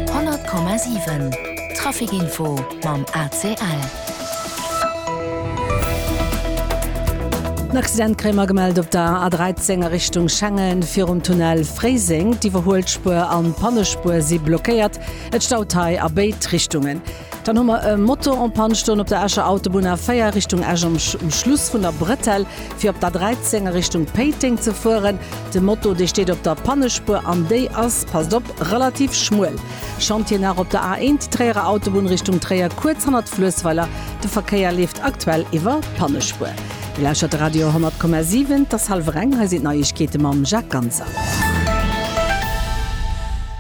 100,7 Trafic Info mam ACL. En Accident kréie mer gemellt op der A13 a Richtung Schengen virum Tunnel Fréiseng. D'Iwwerhuelspuer an d'Pannespuer si blockéiert. Et staut hei a béid Richtungen. Dann hu mer e Motor en panne stoen op der Escher Autobunn A4 Richtung Esch am Schluss vun der Bretelle, fir op d'A13 a Richtung Péiteng ze fueren. De Moto, dee steet op der Pannespuer an déi ass, passt op, relativ schmuel. Chantier nach op der A1, déi Tréierer Autobunn Richtung Tréier, kuerz hannert Fluessweiler. De Verkéier leeft aktuell iwwer d'Pannespuer. Dir lauschtert de Radio 100,7. Et ass hallwer eng. Hei sinn d'Neiegkeete mam Jacques Ganser.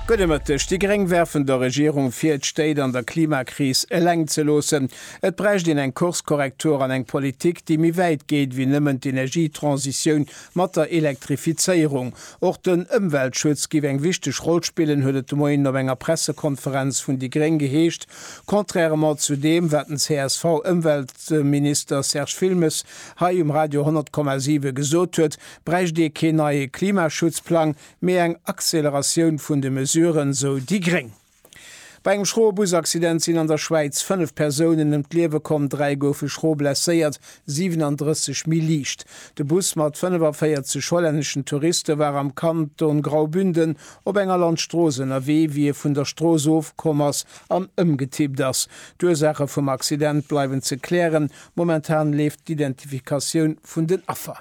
Gudde Mëtteg. Déi Gréng werfen der Regierung vir, d'Stéit an der Klimakris eleng ze loossen. Et bräicht een eng Kurskorrektur an eng Politik, déi méi wäit geet wéi nëmmen d'Energietransitioun mat der Elektrifizéierung. Och den Ëmweltschutz giff eng wichteg Roll spillen, huet et de Moien op enger Pressekonferenz vun déi Gréng geheescht, contrairement zu deem, wat den CSV-Ëmweltminister Serge Wilmes hei um Radio 100,7 gesot huet, bräicht ee keen neie Klimaschutzplang, mee eng Acceleratioun vun de Mesuren, sou déi gréng. Bei engem schroe Busaccident sinn an der Schwäiz 5 Persounen ëm d'Liewe komm, 3 goufe schro blesséiert, 37 méi liicht. De Bus mat 45 hollänneschen Touriste war am Kanton Graubünden op enger Landstrooss ënnerwee, wéi e vun der Strooss ofkomm ass an ëmgetippt ass. D'Ursaache vum Accident bleiwen ze klären, momentan leeft d'Identifikatioun vun den Affer.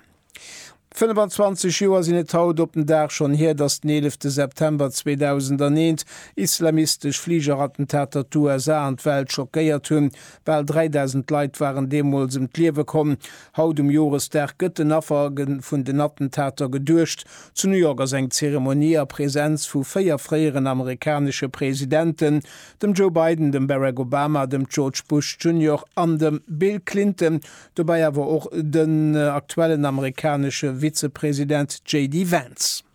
25 Joer sinn et haut op den Dag schonn hier, datt den 11 te September 2001 islamistesch Fligerattentater d'USA an d'Welt schockéiert hunn. Bal 3.000 Leit waren deemools ëm d'Liewe komm. Haut um Joresdag gëtt den Affer vun den Attentater geduecht. Zu New York ass eng Zeremonie a Präsenz vu véier fréieren amerikanesche Presidenten, dem Joe Biden, dem Barack Obama, dem George Bush Junior an dem Bill Clinton, Dobäi awer och den aktuellen amerikanesche Vizepresident JD Vance.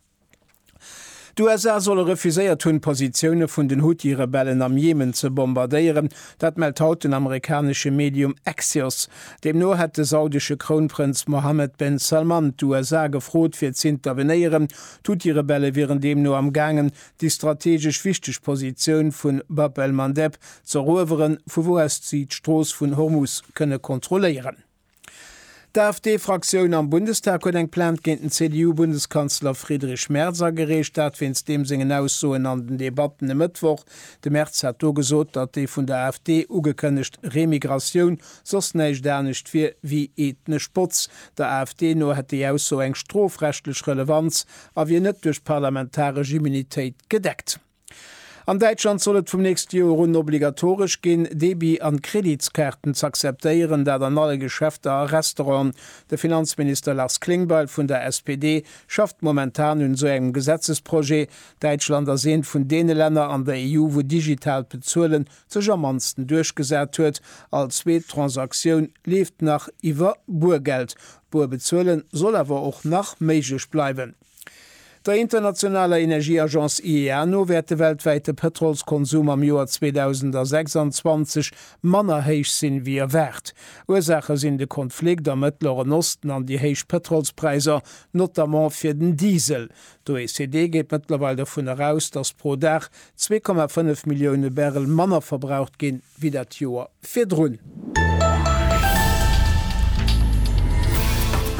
D'USA solle refuséiert hunn, d'Positioune vun den Huthi-Rebellen am Jemen ze bombardéieren. Dat mellt haut den amerikanesche Medium Axios. Deemno hätt de saudesche Krounprënz Mohammed ben Salman d'USA gefrot, fir z'intervenéieren. D'Huthi-Rebelle wieren deemno am gaangen, déi strategesch wichteg Positioun vu Bab el-Mandeb z'erueweren, vu wou aus si d'Strooss vun Hormus kënne kontrolléieren. D'AfD-Fraktioun am Bundestag huet eng Plainte géint den CDU-Bundeskanzler Friedrich Merz agereecht, dat wéinst deem sengen Aussoen an den Debatten e Mëttwoch. De Merz hat do gesot, datt déi vun der AfD ugekënnegt Remigratioun soss näischt anescht wier wéi ethnesch Botz. Der AfD no hätt déi Ausso eng strofrechtlech Relevanz, a wier net duerch d'parlamentaresch Immunitéit gedeckt. An Däitschland soll et vum nächste Joer un obligatoresch ginn, Debi an Kreditskaarten z'akzeptéieren, dat an alle Geschäfter a Restauranten. De Finanzminister Lars Klingbeil vun der SPD schafft momentan un esou engem Gesetzesprojet. Däitschland ass eent vun deene Länner an der EU, wou digitaalt Bezuelen sech am mannsten duerchgesat huet. All zweet Transaktioun leeft nach iwwer Buergeld, D'Buer bezuelen soll awer och nach méiglech bleiwen. Der internationaler Energieagence IEA no wäert de weltwäite Pëtrolskonsum am Joer 2026 manner héich sinn, wéi erwaart. Ursaache sinn de Konflikt am Mëttleren Osten an déi héich Pëtrolspräisser, notamment fir den Diesel. D'OECD geet mëttlerweil dovun eraus, datt pro Dag zwee Komma fënnef Millioune Barrel manner verbraucht ginn, wéi dat Joer virdrun.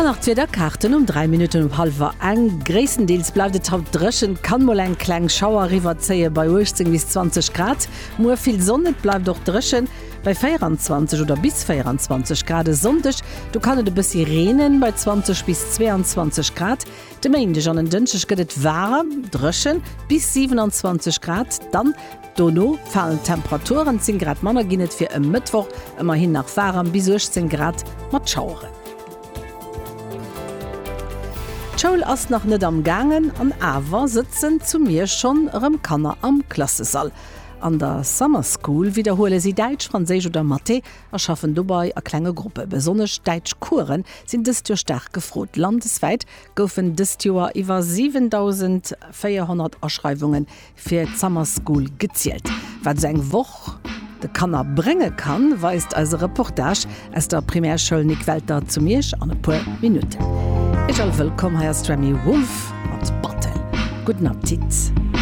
An nach d'Wiederkaarten um 3 Minutten op hallwer eng. Gréisstendeels bleift et haut dréchen, kann mol eng kleng Schauer eriwwerzéien bei 18 bis 20 Grad. Muer vill Sonn, et bleift och dréchen bei 24 oder bis 24 Grad. E Sonndeg, do kann et e bëssi reenen bei 20 bis 22 Grad. De Méindeg an en Dënschdeg gëtt et waarem, dréchen, bis 27 Grad, dann dono falen d'Temperaturen, 10 Grad manner ginn et fir e Mëttwoch, ëmmerhin nach waarem, bis 18 Grad mat Schaueren. D'Schoul ass nach net am gaangen, an awer sëtzen zu Miersch schonn erëm Kanner am Klassesall. An der Summer School widderhuele si Däitsch, Franséisch oder Mathé. a schaffen dobei a klenge Gruppe. Besonnesch d'Däitschcoursen sinn dëst Joer staark gefrot. Landeswäit goufen dëst Joer iwwer 7.400 Aschreiwunge fir d'Summer School gezielt. Wat esou eng Woch de Kanner brénge kann, weist eise Reportage aus der Primärschoul Nic Welter zu Miersch an e puer Minutten. Iech all wëllkomm, hei ass d'Remi Wolf mat Battle. Gudden Appetit!